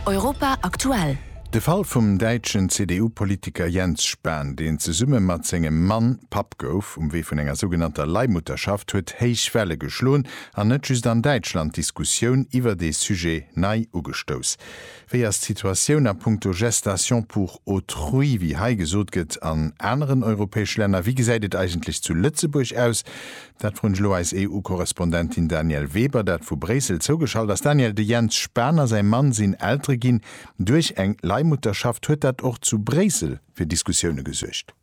Europa aktuell. De Fall vum däitschen CDU-Politiker Jens Spahn, deen zesumme mat sengem Mann Papp gouf, um Wee vun enger sougenannter Leihmutterschaft, huet héich Welle geschloen an net just an Däitschland d'Diskussioun iwwer dee Sujet nei ugestouss. Wéi ass d'Situatioun a punkto Gestation pour autrui, wéi hei gesot gëtt, an aneren europäesch Länner? Wéi gesäit et eigentlech zu Lëtzebuerg aus? Dat froen ech elo eis EU-Korrespondentin Danièle Weber, dat vu Bréissel zougeschalt ass. Danièle, de Jens Spahn a säi Mann sinn Eltere ginn duerch eng Leihmutterschaft. Huet dat och zu Bréissel fir Diskussioune gesuergt?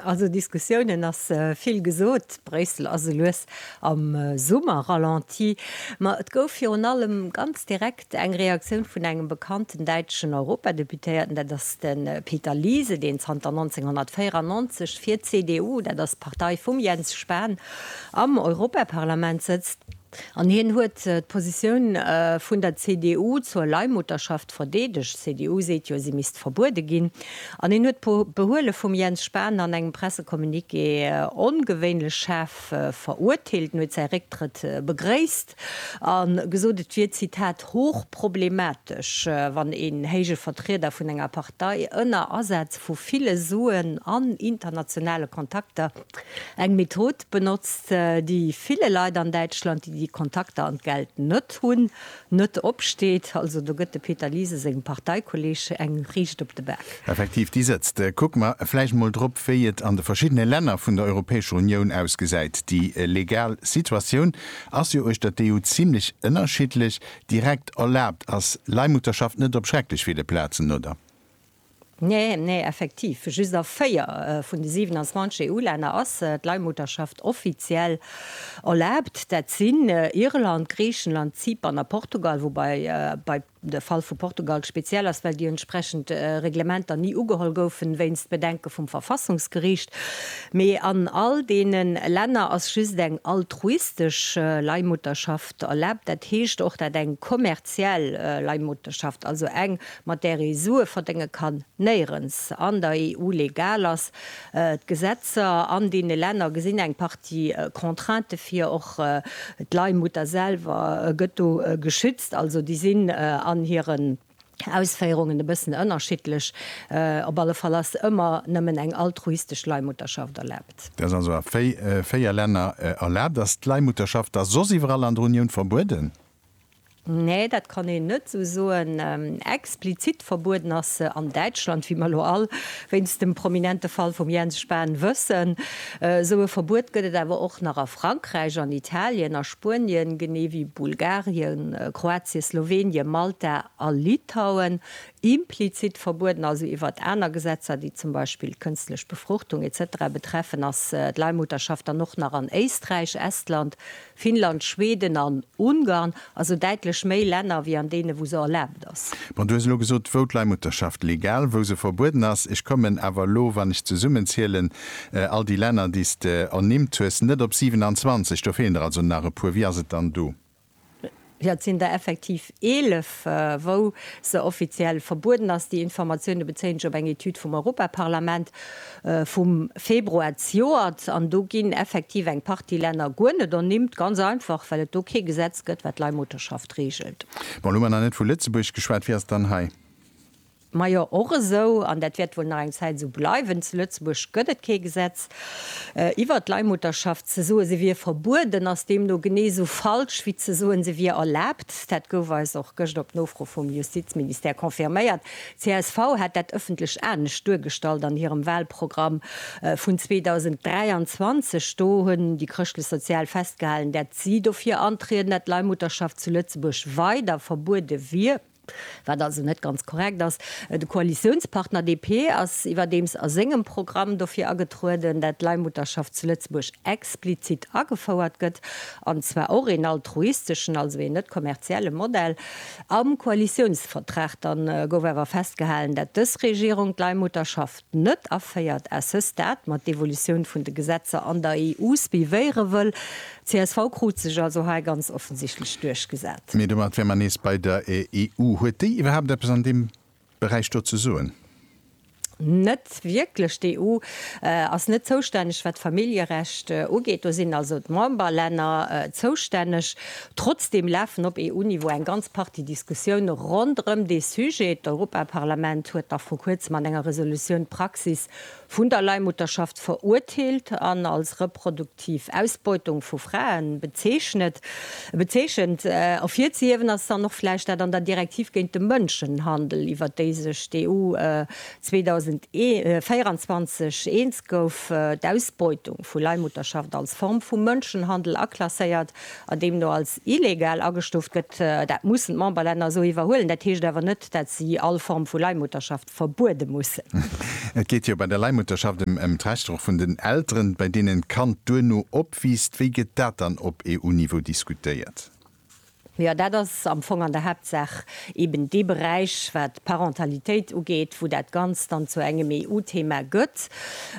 Also Diskussiounen ass vill gesot. Bréissel ass elues am Summer-Ralenti. Ma et gouf virun allem ganz direkt. Eng Reaktioun vun engem bekannten däitschen Europadeputéierten, dat ass de Peter Liese, deen zanter 1994 fir d'CDU, dat ass d'Partei vum Jens Spahn, am Europaparlament sëtzt. An hien huet d'Positioun vun der CDU zur Leihmutterschaft verdeedegt. D'CDU seet jo, si misst verbuede ginn. An hien huet d'Behuele vum Jens Spahn an engem Pressecommuniqué ongewéinlech schaarf verurteelt. En huet säi Récktrëtt begréisst. A gesot, et wier, Zitat, hochproblematesch, wann een héije Vertrieder vun enger Partei ënner Asaz vu ville Suen an internationale Kontakter eng Method benotzt, déi ville Leit an Däitschland, déi déi Kontakter an d'Geld net hunn, net opsteet. Also do gëtt de Peter Liese sengem Parteikolleeg eng riicht op de Bak. Effektiv, déi sëtzt. Kucke mer vläicht mol drop, wéi et an de verschiddene Länner vun der Europäescher Unioun ausgesäit, déi legal Situatioun. Ass jo uechter d'EU zimlech ënnerschiddlech. Direkt erlaabt ass Leihmutterschaft net op schrecklech ville Plazen, oder? Nee, nee, effektiv. Just a 4 vun de 27 EU-Länner ass d'Leihmutterschaft offiziell erlaabt. Dat sinn Irland, Griichenland, Zypern a Portugal, woubai bei. De Fall vu Portugal speziell ass, well déi entsprechend Reglementer ni ugeholl goufen, wéinst Bedenke vum Verfassungsgericht. Mee an all deene Länner ass just eng altruistesch Leihmutterschaft erlaabt, dat heescht och dat eng kommerziell Leihmutterschaft, also eng, mat där ee Sue verdénge kann, néierens an der EU legal ass. D'Gesetzer an deene Länner gesinn eng Partie Contraintë vir. Och d'Leihmutter selwer gëtt do geschützt. Also déi sinn an hiren Ausféierungen e bëssen ënnerschiddlech. Op alle Fall ass ëmmer nëmmen eng altruistesch Leihmutterschaft erlaabt. Dat ass also a véier Länner erlaabt. Ass d'Leihmutterschaft da soss iwwerall an der Unioun verbueden? Nee, dat kann een net esou soen. Explizit verbueden ass se an Däitschland, wéi mer elo all wéinst dem prominente Fall vum Jens Spahn wëssen. Esou e Verbuet gëtt et awer och nach a Frankräich, an Italien, a Spuenien, genee wéi Bulgarien, Kroatien, Slowenien, Malta a Litauen. Implizit verbueden, also iwwert aner Gesetzer, déi zum Beispill d'kënstlech Befruchtung, etc. Betreffen, ass d'Leihmutterschaft dann och nach an Éisträich, Estland, Finnland, Schweden an Ungarn, also däitlech méi Länner wéi an deene wou se erlaabt ass. Bon, du hues elo gesot, wou d'Leihmutterschaft legal, wou se verbueden ass. Ech kommen awer elo, wann ech zesummenzielen, all déi Länner déi s de ernimmt hues, net op 27. Do feelen der also nach e puer. Wie ass et dann do? Jo, et sinn der effektiv 11, wou se offiziell verbueden ass. Déi Informatioune bezéien ech op eng Etüd vum Europaparlament vum Februar zejoert. An do ginn effektiv eng Partie Länner guer net ernimmt, ganz einfach, well et do kee Gesetz gëtt, wat d'Leihmutterschaft reegelt. Bon, elo hu mer nach net vu Lëtzebuerg geschwat. Wie ass dann hei? Majo, och esou, an dat wäert wuel nach eng Zäit esou bleiwen, zu Lëtzebuerg gëtt et kee Gesetz iwwert d'Leihmutterschaft. Ze soen, se wier verbueden, ass deemno genee esou falsch, wéi ze soen, se wier erlaabt. Dat gouf eis och gëscht op Nofro vum Justizministère confirméiert. Csv hat dat ëffentlech anescht duergestallt an hirem Wahlprogramm vun 2023. Do hunn déi Chrëschtlech-Sozial festgehalen, dat si dofir antrieden, dat d'Leihmutterschaft zu Lëtzebuerg weider verbuede wier. Wat also net ganz korrekt ass. De Koalitiounspartner DP ass iwwerdeems a sengem Programm dofir agetrueden, dat d'Leihmutterschaft zu Lëtzebuerg explizit agefouert gëtt, an zwar och een altruisteschen, also een net kommerzielle Modell. Am Koalitiounsvertrag dann gouf awer festgehalen, dat dës Regierung d'Leihmutterschaft, net aféiert, à ce stade, mat d'Evolutioun vun de Gesetzer an der EU suivéiere wëll. Csv krut sech also hei ganz offensichtlech duerchgesat. Mee domat wäre mer nees bei der EU. Huet déi iwwerhaapt eppes an deem Beräich do ze soen? Net wierklech. D'EU ass net zoustänneg, wat d'Familljerecht ugeet. Do sinn also d'Memberlänner zoustänneg. Trotzdeem lafen op EU-Niveau eng ganz Partie Diskussioune ronderëm dee Sujet. D'Europaparlament huet nach vru kuerzem an enger Resolutioun d'Praxis vun der Leihmutterschaft verurteelt an als reproduktiv Ausbeutung vu Frae bezeechnet. Ervirzehiewen ass dann och vläicht dat an der Direktiv géint de Mënschenhandel, iwwert déi sech d'EU 2024 eens gouf, d'Ausbeutung vu Leihmutterschaft als Form vu Mënschenhandel aklasséiert. an deem do als illegal agestuuft gëtt, dat mussen d'Memberlänner esou iwwerhuelen. Dat heescht awer net, datt si all Form vu Leihmutterschaft verbuede mussen. Et geet jo bei der Leihmutterschaft ëm d'Rechter och vun den Elteren, bei deenen d'Kand duerno opwiisst. Wéi gëtt dat dann op EU-Niveau diskutéiert? Jo, dat ass am Fong an der Haaptsaach eben dee Beräich, wat d'Parentalitéit ugeet, wou dat Ganzt dann zu engem EU-Thema gëtt.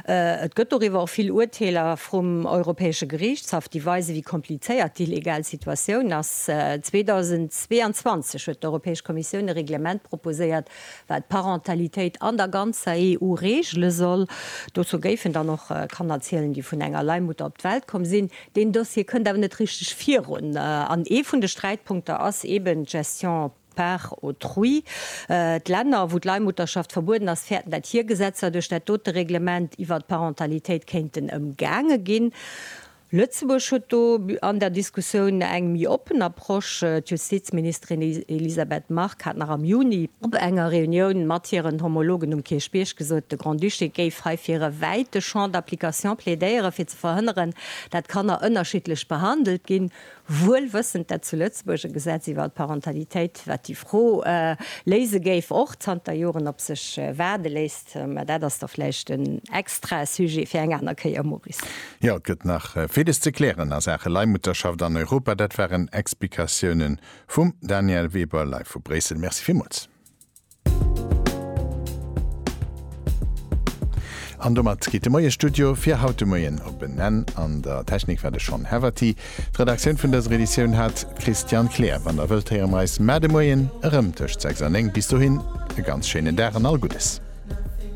Et gëtt doriwwer och vill Urteeler vrum Europäesche Geriichtshaff, déi weisen, wéi komplizéiert déi legal Situatioun ass. 2022 huet d'Europäesch Kommissioun e Reglement proposéiert, wat d'Parentalitéit an der ganzer EU regele soll. Dozou géifen dann och Kanner zielen, déi vun enger Leihmutter op d'Welt komm sinn. Deen Dossier kënnt awer net richteg virun. An ee vun de Sträitpunkter ass eben d'Gestion par autrui. D'Länner, wou d'Leihmutterschaft verbueden ass, fäerten, dat hir Gesetzer duerch dat dote Reglement iwwert d'Parentalitéit kéinten ëmgaange ginn. Lëtzebuerg huet do an der Diskussioun eng méi oppen a. Proche. D'Justizministerin Elisabeth Margue hat nach am Juni op enger Reunioun mat hiren Homologen um Kierchbierg gesot, de Grand-Duché géif hei fir e wäite Champ d'application plädéieren, fir ze verhënneren, dat Kanner ënnerschiddlech behandelt ginn, wuel wëssend, dat zu Lëtzebuerg e Gesetz iwwer d'Parentalitéit, wat déi Fro léise géif, och zanter Joren op sech waarde léisst. Mä dat ass da vläicht en extra Sujet fir eng aner Kéier, Maurice. Jo, et gëtt nach villes ze klären a Saache Leihmutterschaft an Europa. Dat waren Explikatiounen vum Danièle Weber live vu Bréissel. Merci villmools. An domat geet de Moie Studio fir haut de Moien op en Enn. An der Technik war de Sean Haverty. D'Redaktioun vun dëser Editioun hat d'Christiane Kleer. Wann der wëllt, héiere mer eis mar de Moien erëm tëscht 6 an 9. Bis dohin e ganz schéinen Dag an all Guddes.